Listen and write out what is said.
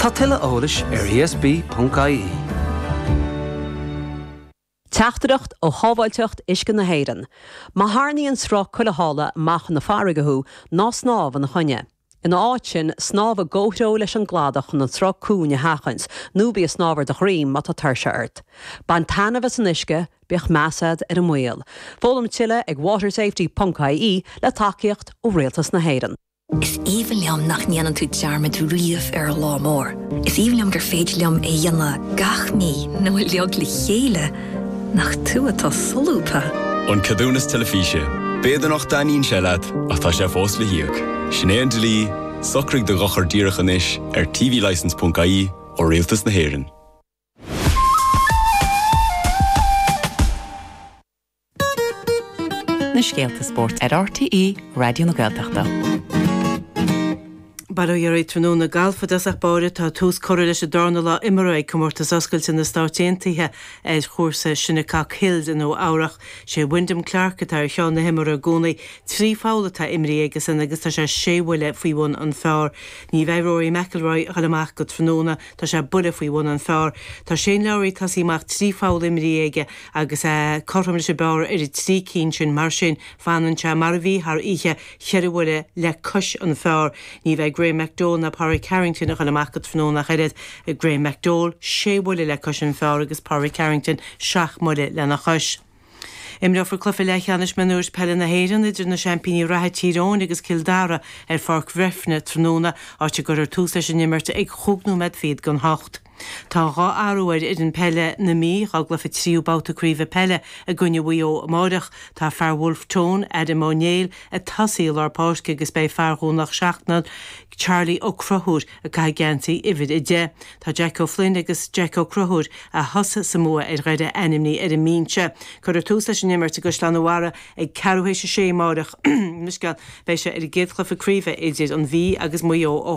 Tá tuilleadh eolais ar ESB.ie. Teachtaireacht ó Shábháilteacht Uisce na hÉireann, Má tharraingíonn sruth cuilitheála amach chun na farraige thú, ná snámh ina choinne. Ina áit sin, snámh i gcomhthreo leis an gcladach chun an sruth cúng a sheachaint, nó bí ag snámh ar do dhroim má tá tuirse ort. Bain taitneamh as an uisce, bíodh meas agat ar an mbaol. Foghlaim tuilleadh ag watersafety ponc ie le tacaíocht ó Rialtas na hÉireann. Is aoibhinn liom nach ndéanann tú dearmad riamh ar an lá mór. Is aoibhinn liom gur féidir liom é a dhéanamh gach mí nó uilig le chéile. Nach tú atá solúbtha! An Ceadúnas Teilifíse, B'fhéidir nach dtaitníonn sé leat ach tá sé fós le híoc. Sin é an dlí, socraigh do dhochar díreach anois ar tvlicence ponc ie ó Rialtas na hÉireann. Na scéalta spóirt ar RTÉ Raidió na Gaeltachta. Bail ó Dhia oraibh tráthnóna. Galf i dtosach báire, tá tús curtha leis an darna lá imeartha ag Comórtas Oscailte na Stáit Aontaithe ar chúrsa Shinnecock Hills i Nua-Eabhrac. Sé Wyndham Clark atá ar cheann na himeartha i gcónaí. Trí pholl atá imrithe aigesan agus tá sé sé bhuille faoi bhun an phar. Ní bheidh Rory McIlroy ag dul amach go tráthnóna. Tá sé buille faoi bhun an phar. Tá Shane Lowry tosaithe amach, trí pholl imrithe aige agus é cothrom leis an bpar ar na trí cinn sin. Mar sin, fanann sé mar a bhí thar oíche, cheithre bhuille le cois an phar. Ní bheidh Graeme McDowell ná Pádraig Harrington ag goil amach go tráthnóna ach oiread, Graeme McDowell sé bhuille le cois an phar agus Pádraig Harrington seacht mbuille lena chois. Imreofar cluiche leathcheannais mionúir peile na hÉireann idir na seaimpíní reatha Tír Eoghain agus Cill Dara ar Pháirc Bhréifne tráthnóna, áit a gcuirfear tús leis an imirt ag chúig nóiméad fichead chun a hocht. Tá dhá athrú ar fhoireann peile na Mí dá gcluiche tríú babhta craoibhe peile i gcoinne Mhaigh Eo amáireach. Tá fear Wolfe Tones, Adam Ó Néill, ag tosú i lár páirce agus beidh fear Dhomhnach Seachnaill, Charlie Ó Conchúir, Ag caitheamh geansaí uimhir a deich, tá Jeaic Ó Floinn agus Jeaic Ó Conchúir, a thosaigh sa mbua ar Dhoire ainmnithe ar an mbinse. Cuirfear tús leis an imirt i gCaisleán an Bharraigh ag ceathrú théis a sé amáireach. Beidh sé ar an gcéad chluiche craoibhe idir an Mhí agus Maigh Eo ó